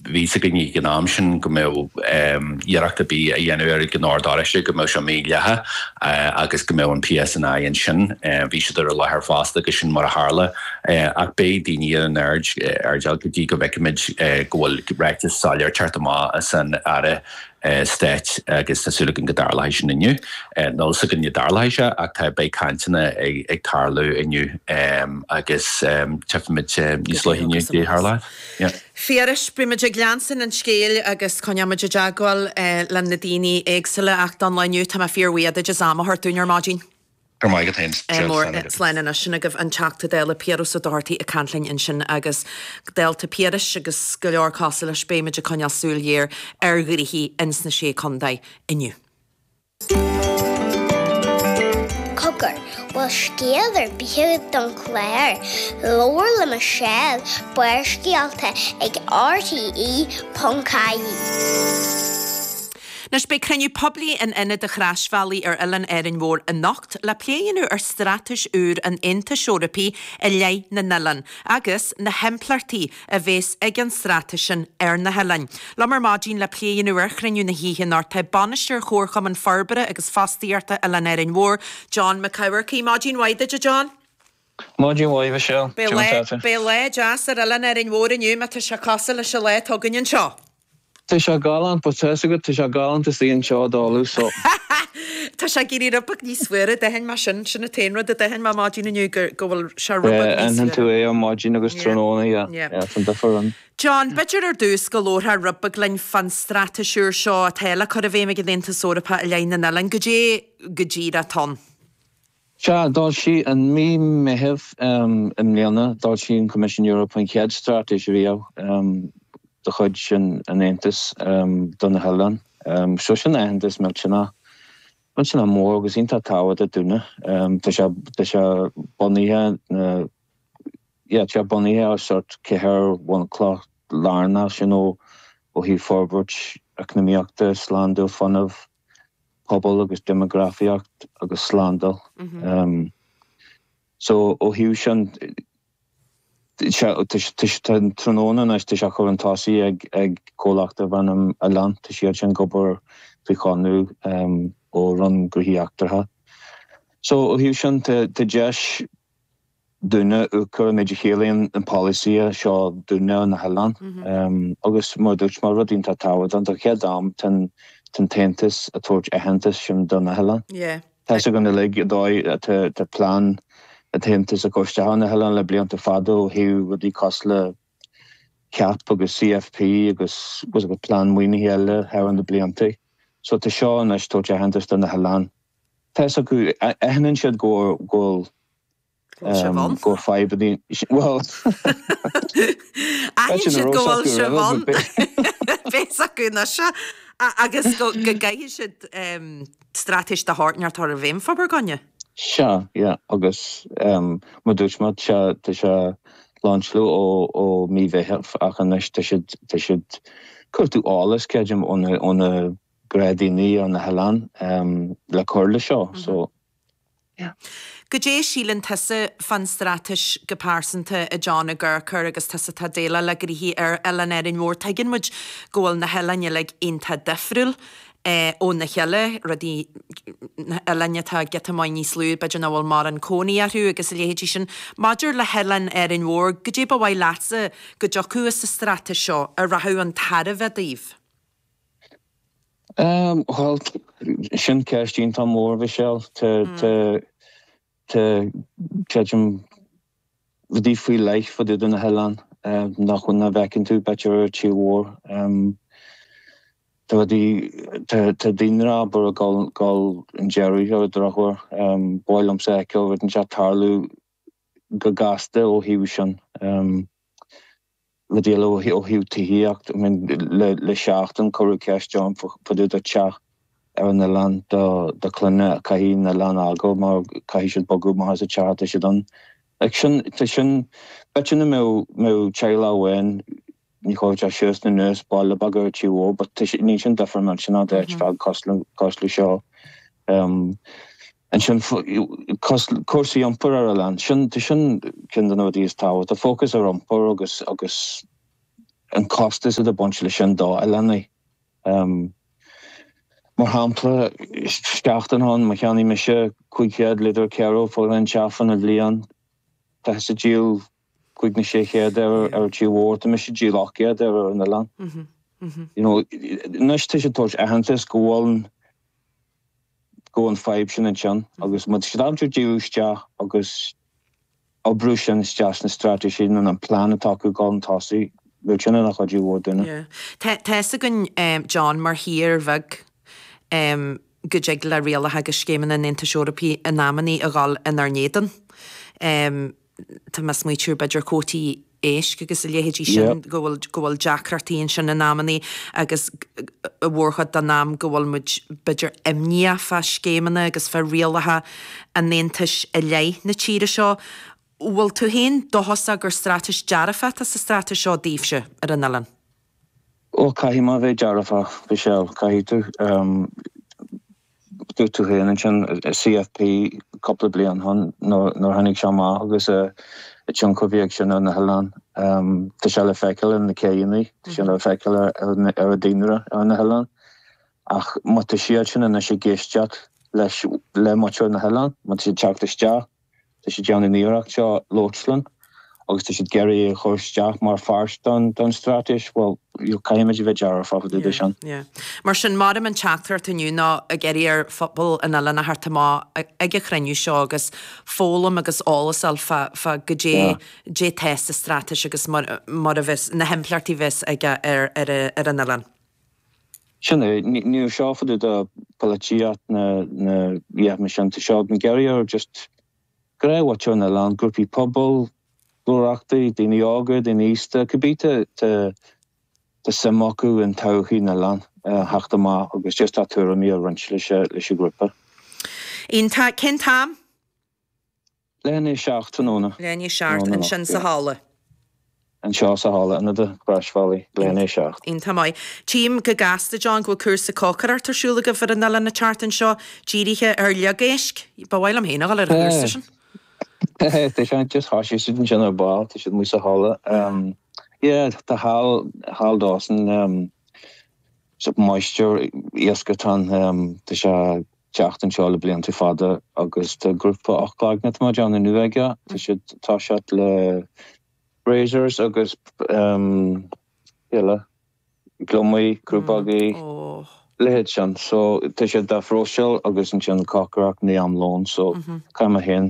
bhí a fhios againn ag an am sin go mbeadh iarracht ar bith a dhéanamh ar an Ord Oráiste go mbeadh sé mídhleathach agus go mbeadh an PSNI ansin, bhí siad ar an láthair fosta agus sin mar a tharla ach beidh daoine ar an airdeall go dtí go bhfeicfimid go bhfuil ráiteas soiléir ceart amach as an Aire Stáit agus tá súil againn go dtarlóidh sin inniu, níl a fhios againn go dtarlóidh sé ach tá, beidh cainteanna ag tarlú inniu agus tchífimid níos luaithe inniu goidé a tharlóidh. Yes. Phiarais, beimid ag leanstan an scéal agus coinneoimid i dteagmháil le na daoine éagsula ach don lá inniu tá mé fíor bhuíoch duit as am a thabhairt dúinn ar maidin. Go raibh maith agat fhéin. Slán agaibh. Slán anois sin agaibh an Teachta Dála Piaras Ó Dochartaigh ag caint linn ansin agus dálta Piarais agus go leor cosúil leis beimid ag coinneáil súil ghéar ar ghnoithí ins na Sé Condae inniu. Cogar, bhfuil scéal ar bith agat don chlár, Labhair le Michelle, Barrscéalta ag RTÉ ponc ie. Anois beidh cruinniú poiblí in Ionad an Chrosbhealaigh ar Oileán Árainn Mhór anocht le plé a dhéanamh ar straitéis úr an Aontais Eorpaigh i leith na n-oileán agus na himpleachtaí a bhéas ag an straitéis sin ar na hoileáin. Liom ar maidín le plé a dhéanamh ar chruinniú na hoíche anocht tá bainisteoir Chomharchumann Forbartha agus Fostaíochta Oileán Árainn Mhór, John McCafferty. Maidín mhaith duit, a John. Maidín mhaith, Michelle. Beidh lá deas ar Oileán Árainn Mhór inniu, má tá sé cosúil leis an lá atá againn anseo. Tá sé galánta, but tá's agat, tá sé galánta suí anseo dálta, so. Tá sé ag éirí rud beag níos fuaire, d'aithin mé sin, sin an t-aon rud a d'aithin mé ar maidin inniu, go bhfuil sé rud beag níos fuaire. Yeah, aithníonn tú é ar maidin agus tráthnóna, yeah, yeah, tá an difear ann. John, b'fhéidir ar dtús go labharfá rud beag linn fán straitéis úr seo atá le cur i bhfeidhm ag an Aontas Eorpach i leith na n-oileán, goidé go díreach atá ann? Sea, foilsíodh i mí Meithimh i mbliana, d'fhoilsigh an Coimisiún Eorpach an chéad straitéis riamh de chuid an Aontais do na hoileáin. Seo sin aitheantas millteanach, millteanach mór agus iontach tábhachtach dúinne. Tá sé, tá sé bunaithe, yeah, tá sé bunaithe ar sort ceithre bhunchloch lárnach, you know, ó thaobh forbairt eacnamaíochta, slándáil fuinnimh, pobal agus deimeagrafaíocht agus slándáil. So ó thaobh sin, tá an tráthnóna anois, tá sé á chur chun tosaigh ag comhlacht darb ainm Oileán, tá siad sin ag obair faoi chonradh ó Roinn Gnóthaí Eachtracha. So ó thaobh sin, tá deis Dúinne Úcra, méid a chiallaíonn an polasaí seo dúinne ar na hoileáin. Agus mar a dúirt mé, rud iontach tábhachtach, don chéad am tá an tAontas ag tabhairt aitheantais sin do na hoileáin. Tá fhios againn uilig an dóigh atá plean an tAontas ag cur isteach ar na hoileáin le blianta fada ó thaobh rudaí cosúil le CAP agus CFP agus plean maoinithe eile thar na blianta. So tá seo anois ag tabhairt aitheantais do na hoileáin. tá fhios acu, aithníonn siad go bhfuil fadhb ann, bhuel, aithníonn siad go bhfuil sibh ann, tá fhios acu anois, agus go gcaithfidh siad straitéis de shórt inteacht a chur i bhfeidhm fá bhur gcoinne. Sea, yeah, agus mar dúirt mé, tá sé lainseáilte ó mí Mheithimh ach anois tá siad ag cuartú eolas, creidim, ó na. dreamannaí ar na hoileáin le cur le seo so yeah. Goidé a síleann tusa fán straitéis go pearsanta, a John, a Gaerchur, agus tusa atá déileáil le gnoithe ar Oileán Árainn Mhór? Tuigeann muid go bhfuil na hoileáin uilig iontach difriúil óna cheile, rudaí, na hoileáin atá giota maith níos lú, b'fhéidir nach bhfuil mórán cónaí orthu agus a leithéidí sin. Maidir le hOileán Árainn Mhór, goidé ba mhaith leatsa go dtiocfadh as an straitéis seo a rachadh chun tairbhe daoibh? Bhuel, sin ceist iontach mór, a Mhichelle. Tá, tá, tá, creidim, rudaí faoi leith fá dtaobh de na hoileáin nach bhfuil, nach bhfeiceann tú, b'fhéidir, ar an tír mhór. Tá rudaí, tá, tá daonra, abair, ag dul, dul chun deiridh ar an drochuair. Ba mhaith liomsa a fheiceáil rud inteacht ag tarlú. go gasta ó thaobh sin le déileáil ó thaobh tithíocht. I mean le seachtain cuireadh ceist orm fá dtaobh do teach ar an oileán do clainne a chaithfidh an oileán fhágáil mar caithfidh siad bogadh amach as an teach atá siad ann. Sin, tá sin, b'fhéidir nach mbeadh teaghlach amháin, Ní chuirfeadh sé suas ná anuas baile beag ar tír mór but tá sé, níl sin difear ansin do áit beag cosúil le seo. Ansin cúrsaí iompair ar an oileán sin, tá sin ceann de na rudaí is tábhachtaí, focus ar iompar agus agus an costas atá ag baint leis sin do oileánaigh. Mar shampla, seachtain ó shin, má cheannaigh mise 500 litre kero for an tseachtain, an bhliain, tá tusa ag díol, cúig nó sé chéad ar an tír mhór, tá mise díreach céad ar an oileán. You know, anois tá siad ag tabhairt aitheantas go bhfuil go bhfuil an fhadhb sin ansin agus muid sláintiúil díriú isteach agus oibriú sin isteach sna straitéisí nó an plean atá acu ag dul chun tosaigh, bhuel sin ina chuidiú mhór dúinne. Tá fhios againn, John, mar thír bheag, go dtig le rialacha agus scéimeanna an Aontais Eorpaí in amannaí a dhul inár n-éadan. tá mé ag smaoitiú ar b'fhéidir cuótaí éisc agus a leithéidí sin go bhfuil, go bhfuil deacrachtaí ansin in amannaí agus an mhórchuid den am go bhfuil muid b'fhéidir imníoch fá scéimeanna agus fá rialacha an Aontais i leith na tíre seo. Bhfuil tú féin dóchasach gur straitéis dearfach atá sa straitéis seo daoibhse ar an oileán? Ó, caithfidh mé bheith dearfach, Mhichelle, caithfidh tú. Dúirt tú féin ansin an CFP cúpla bliain ó shin nuair a tháinig sé amach agus an tionchar a bhí ag sin ar na hoileáin. Tá sé le feiceáil ar na céidheannaí, tá sé le feiceáil ar an daonra ar na hoileáin. Ach má tá siadsan anois ag éisteacht le muintir na n-oileán, má tá siad ag teacht isteach, Tá siad ag déanamh an iarracht seo labhairt linn agus tá siad ag iarraidh é a chur isteach mar pháirt don straitéis. Bhuel, caithfimid a bheith dearfach fá dtaobh de sin. Mar sin, creidim an teachtaireacht inniu ná ag iarraidh ar phobal an oileán a theacht amach ag an chruinniú seo agus foghlaim agus eolas a fháil fá goidé atá sa straitéis agus mar a bheas, na himpleachtaí a bheas aige ar an oileán. Sin é, níl seo fá dtaobh de pholaitíocht ná a dhath mar sin. Tá siad ag iarraidh ar just ar mhuintir an oileáin, grúpaí pobail, comhlachtaí, daoine óga, daoine aosta, cibé atá suim acu in todhchaí na n-oileán a theacht amach agus just a dtuairimí a roinnt leis an ghrúpa. Iontach. Cén t-am? Leath i ndiaidh 7 tráthnóna. Leath i ndiaidh 7 ansin sa halla. Anseo sa halla Ionad an Chrois Bhealaigh. Leath i ndiaidh 7. Iontach maith. Tchím go gasta, John, go bhfuil cúrsa cócaireacht ar siúl agaibh ar an oileán an tseachtain seo, dírithe ar shliogéisc. Ba mhaith liom féin a dhul ar an gcúrsa sin. Hé, tá siad just thosaigh siad ansin ar ball, tá siad amuigh sa halla. Yeah, tá Hal, Hal Dawson, so máistir iasc atá ann, tá sé. teacht anseo le blianta fada agus tá grúpa ocht gcloigne ar maidin inniu aige. Tá siad ag toiseacht le razors agus cé eile? Gliomaigh, crúbógaí, a leithéid sin. So tá siad dá phróiseáil agus ansin cócaireacht i ndiaidh am lóin. So caithfidh mé féin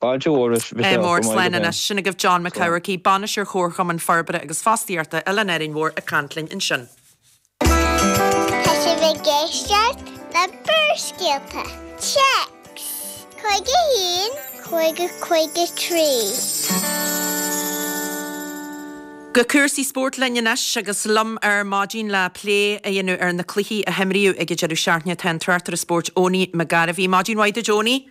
Fáilte mhór roimh mhic Aodha chomh maith, go mbeidh. Slán anois. Sin agaibh John Mac Eachmharcaigh, Bainisteoir Chomharchumann Forbartha agus Fostaíochta Oileán Árainn Mhór ag caint linn ansin. Tá sibh ag éisteacht le Barrscéalta, téacs, 51553. Go cúrsaí spóirt linn anois agus liom ar maidin le plé a dhéanamh ar na cluichí a himríodh ag an deireadh seachtaine tá an tráchtaire spóirt Eoiní Mac Gairbhí. Maidin mhaith duit Eoiní.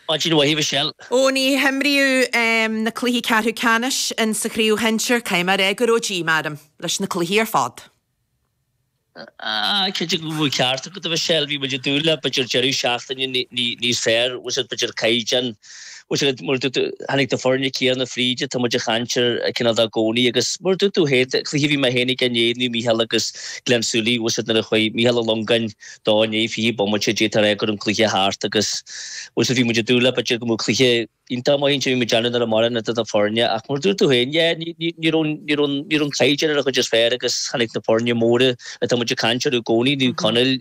Maidin mhaith, a Mhichelle. Eoiní, himríodh na cluichí ceathrú ceannais insa chraobh shinsir, caithfidh mé a rá go raibh díomá orm leis na cluichí ar fad. Ah, cinnte go bhfuil ceart agat, a Mhichelle, bhí muid ag dúil le b'fhéidir deireadh seachtaine níos fearr, bhfuil a fhios agat b'fhéidir caighdeán, bhfuil a fhios agat mar a dúirt tú, tháinig na foirne céanna fríd atá muid ag caint orthu cineál i gcónaí agus mar a dúirt tú féin, cluiche a bhí mé féin aige inné, Naomh Mícheál agus Gleann tSúilí, bhfuil a fhios agat nuair a chuaigh Mícheál Ó Longáin, De i ndiaidh fiche bomaite d'fhéadfá a ráit go raibh an cluiche thart agus bhuel so bhí muid ag dúil le b'fhéidir go mbeadh cluiche iontach maith ansin bhí muid ag déanamh nach raibh mórán idir na foirne ach mar a dúirt tú féin yeah ní ní ní raibh ní raibh ní raibh an caighdeán ar a chuid is fearr agus tháinig na foirne móra atá muid ag caint orthu i gcónaí Naomh Conaill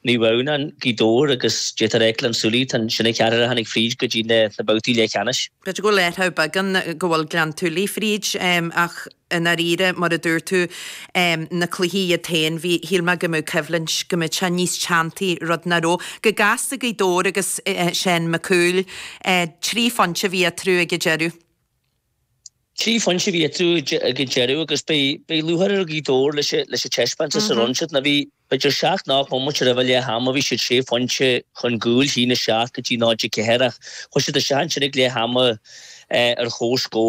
Naomh Adhamhnáin Gaoth Dobhair agus d'fhéadfá a ráit Gleann tSúilí tá sin an ceathrar a tháinig fríd go dtí na na babhtaí leathcheannais. B'fhéidir go bhfuil ádh orthu beagán go bhfuil Gleann tSúilí fríd ach i ndáiríre, mar a dúirt tú, na cluichí iad féin, bhí, shíl mé go mbeadh coimhlint, go mbeadh sé níos teanntaí, rud nach raibh. Go gasta Gaoth Dobhair agus Seán Mac Cumhaill, trí phointe a bhí eatarthu ag an deireadh. Trí phointe a bhí eatarthu ag an deireadh agus beidh lúcháir ar Ghaoth Dobhair leis an taispeántas a rinne siad. Nó bhí, b'fhéidir seacht nó ocht mbomaite roimh leath ama bhí siad sé phointe chun cúil, 1-7 go dtí 0-4, ach chuaigh siad isteach ansin ag leath ama ar chomhscór.